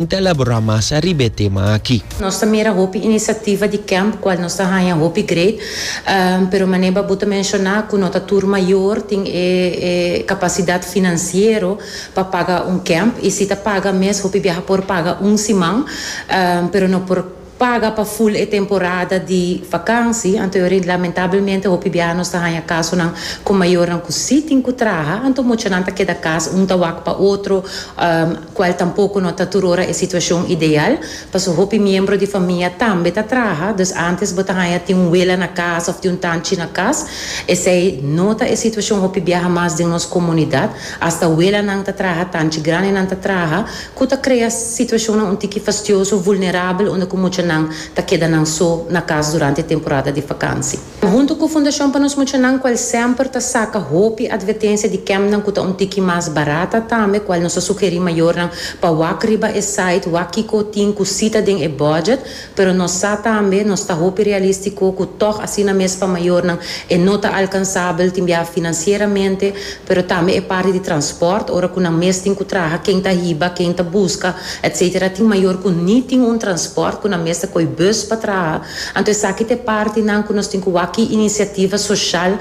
N ta elaborá mas ariba e tema aki. Nos ta mira hopi inisiativa di kemp kual nos ta haña hopi great, pero manera bo ta menshoná ku no ta tur mayor tin e kapasidat finansiero pa paga un kemp, i si ta paga mes hopi biaha por paga un siman, pero no por. paga pa full e temporada di vakansi, anto yo rint lamentablemente hopi biaha nos ta haña kasonan ku mayornan ku si tin ku traha, anto muchanan ta keda kas un ta wak pa otro, kual tampoko no ta tur ora e situashon ideal, paso hopi miembro di famia tambe ta traha, dus antes bo ta haña tin un wela na kas òf tin un tanchi na kas, esei no ta e situashon hopi biaha mas den nos komunidat, asta welanan ta traha, tanchi grandenan ta traha, ku ta krea situashonnan un tiki fastioso, vulnerabel unda ku muchanan ta keda nan so na kas durante e temporada di fakansi. Huntu ku Fundashon pa nos Muchanan, kual semper ta saka hopi advertensia di kèmpnan ku ta un tiki mas barat, ta tambe kual nos ta sugerí mayornan pa wak riba e site wak kiko tin ku sita den e bòdjèt, Pero nos sa tambe, nos ta hopi realístiko ku tòg asina mes pa mayornan e no ta alkansabel tin biaha finansieramente, pero tambe e parti di transpòrt, ora ku nan mes tin ku traha, ken ta hiba, ken ta buska, etcétera. Tin mayor ku ni tin un transpòrt, ku nan mes ta koi bùs pa traha. Anto esaki ta e partinan ku nos tin ku wak ki inisiativa soshal.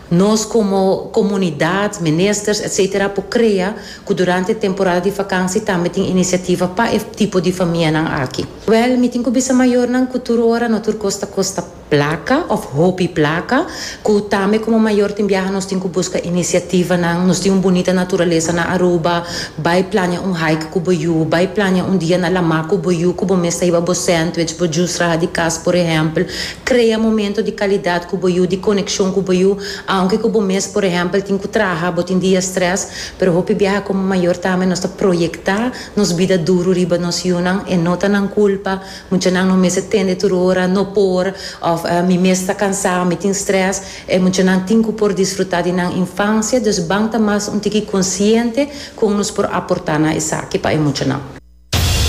Nos komo komunidat, ministers etc. Por krea ku durante e temporada di vakansi tambe tin inisiativa pa e tipo di famianan aki. Wèl, mi tin ku bisa mayornan ku tur ora no tur kos ta kosta plaka òf hopi plaka, ku tambe komo mayor tin biaha nos tin ku buska inisiativanan. Nos tin un bunita naturalesa na Aruba, bai plania un hike ku bo yu, bai plania un dia na Lamá ku bo yu ku bo mes ta hiba bo sandwich, bo jus raha di kas por ehèmpel. Krea momento di kalidat ku bo yu, di konekshon ku bo yu, aunke ku bo mes por ehèmpel tin ku traha, bo tin dia strès, pero hopi biaha komo mayor tambe nos ta proyektá nos bida duru riba nos yunan, e no ta nan kulpa, muchanan no mester tende tur ora, no por, òf mi mes ta kansá, mi tin strès, e muchanan tin ku por disfrutá di nan infansia, dus ban ta mas un tiki konsiente kon nos por aportá na esaki pa e muchanan.